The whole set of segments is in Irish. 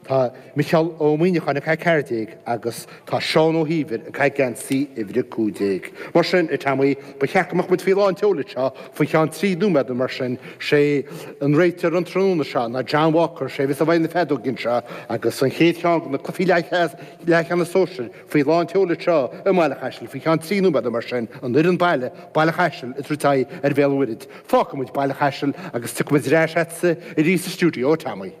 Tá Micheál Ó Muíneacháin ag caitheamh 14 agus tá Seán Ó hÍomhair ag caitheamh geansaí uimhir a cúig déag. Mar sin, a Tommy, ba cheart go mbeadh muid faoi lán tseoil anseo faoi cheann trí nóiméad nó mar sin. Sé an réiteoir an tráthnóna seo ná John Walker. Sé a bheas i bhfeighil na feadóige anseo agus an chéad cheann de na cluichí leathcheannais sóisir faoi lán tseoil anseo i mBaile Chaisil faoi cheann trí nóiméad nó mar sin. An fhoireann baile, Baile Chaisil ag tabhairt aghaidh ar Bhéal an Mhuirthead. Fágfaimid Baile Chaisil agus tiocfaimid ar ais agatsa arís sa stiúideo, a Tommy.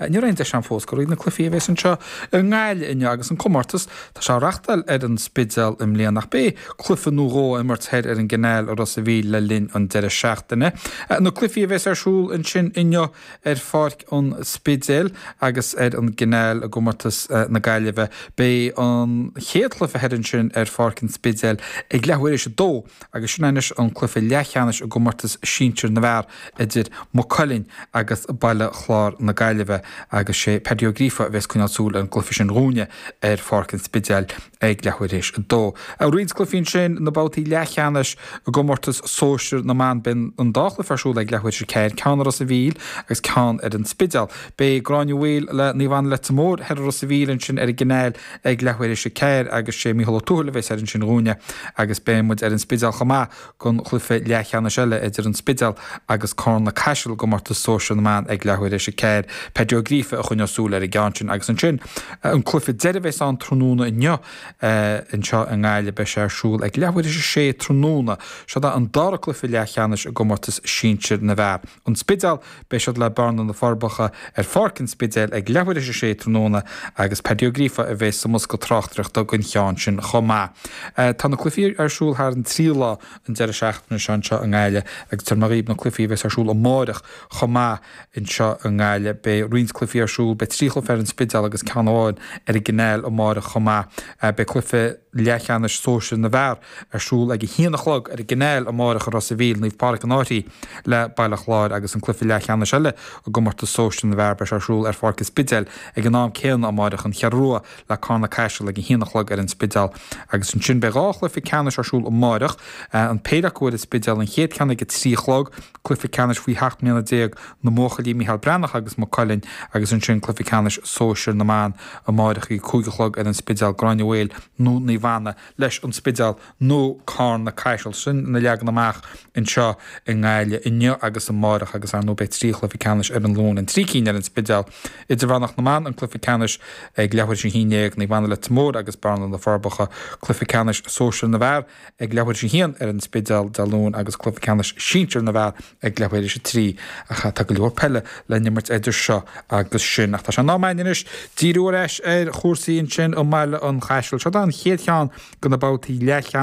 Ní raibh aon deis againn fós a ghoil thrí na cluichí a bhéas anseo i nGaillimh inniu agus an comórtas tá sé á reachtáil ar an Spidéal i mbliana ach beidh cluiche nó dhó á imirt thoir ar an gCainéal i Ros a Mhíl le linn an deireadh seachtaine. Na cluichí a bhéas ar siúl ansin inniu ar Pháirc an Spidéil agus ar an gCainéal i gcomórtas na Gaillimhe. Beidh an chéad chluiche thoir ansin ar Pháirc an Spidéil ag leathuair théis a dó. Agus sin anois an cluiche leathcheannais i gcomórtas sinsir na bhfear idir Maigh Cuilinn agus Baile Chlár na Gaillimhe agus sé Paddy Ó Gríofa a bhéas ag coinneáil súil ar an gcluiche sin dhúinne ar Pháirc an Spidéil ag leathuair théis a dó. Roinnt cluichí ansin, na babhtaí leathcheannais i gcomórtas sóisir na mban. Beidh an dá chluiche ar siúl ag leathuair théis a ceathair, ceann i Ros a' Mhíl agus ceann ar an Spidéal. Beidh Gráinne Mhaol le Naomh Anna Leitir Móir thoir i Ros a' Mhíl, ansin ar an gCainéal, ag leath uair théis a ceathair agus sé Micheál Ó Tuathail a bheas thoir ansin dhúinne agus beidh muid ar an Spidéal chomh maith gon chluife leathcheannais eile idir an Spidéal agus Carna Caiseal i gcomórtas sóisir na mban ag leath uair théis a ceathair Peaidí Ó Gríofa a choinneos súil ar an gceann sin agus ansin an cluife deireadh bheas ann tráthnóna inniu anseo i nGaillimh beidh sé ar siúl ag leath uair théis a sé tráthnóna. Seod é an dara cluife leathcheannais i gcomórtas sinsir na bhfear. An Spidéal, beidh siad le Bearna na Forbacha ar Pháirc an Spidéil ag leathuair théis a sé tráthnóna agus Paddy Ó Gríofa a bheas sa mbosca tráchtaireachta gon cheann sin chomh maith. Tá na cluichí ar siúl thar an trí lá an deireadh seachtaine seo anseo i nGaillimh agus tabharfaidh muid dhaoibh na cluichí a bheas ar siúl amárach chomh maith anseo i nGaillimh. Beidh roinnt cluichí ar siúl, beidh trí chluiche ar an Spidéal agus ceann amháin ar an gCainéal amárach chomh maith. Beidh cluiche leathcheannais sóisir na bhfear ar siúl ag a haon a chlog ar an gCainéal amáireach i Ros a' Mhíl, Naomh Pádraig An Fhairche, le Baile Chláir agus an cluiche leathcheannais eile i gcomórtas sóisir na bhfear. Beidh sé ar siúl ar Pháirc an Spidéil ag an am céanna amáireach, An Cheathrú Rua le Carna Caiseal ag a haon a chlog ar an Spidéal agus ansin beidh dhá chluife ceannais ar siúl amáireach, an péire acu ar an Spidéal, an chéad cheann ag a trí a chlog, cluife ceannais faoi sheacht mbliana déag na mbuachaillí, Micheál Breathnach agus Maigh Cuilinn agus ansin cluife ceannais sóisir na mban amáireach ag a cúig a chlog ar an Spidéal, Gráinne Mhaol nó Naomh Anna leis an Spidéal nó Carna Caiseal. Sin an leagan amach anseo i nGaillimh inniu agus amáireach agus ar ndóigh beidh trí chluiche ceannais ar an Luan na trí cinn ar an Spidéal. Idirmheánach na mBan, an cluiche ceannais ag leathuair théis a haon déag, Naomh Anna Leitir Móir agus Bearna, Na Forbacha. Cluiche ceannais sóisir na bhfear ag leathuair théis a haon ar an Spidéal Dé Luain agus cluiche ceannais sinsir na bhfear ag leibhéal aois a trí, ach tá go leor peile le n-imirt eidir seo agus sin. Ach tá sé in am againn anois díriú ar ais ar chúrsaí anseo i mBaile an Chaisil. Seo é an chéad cheann de na babhtaí leathcheannais.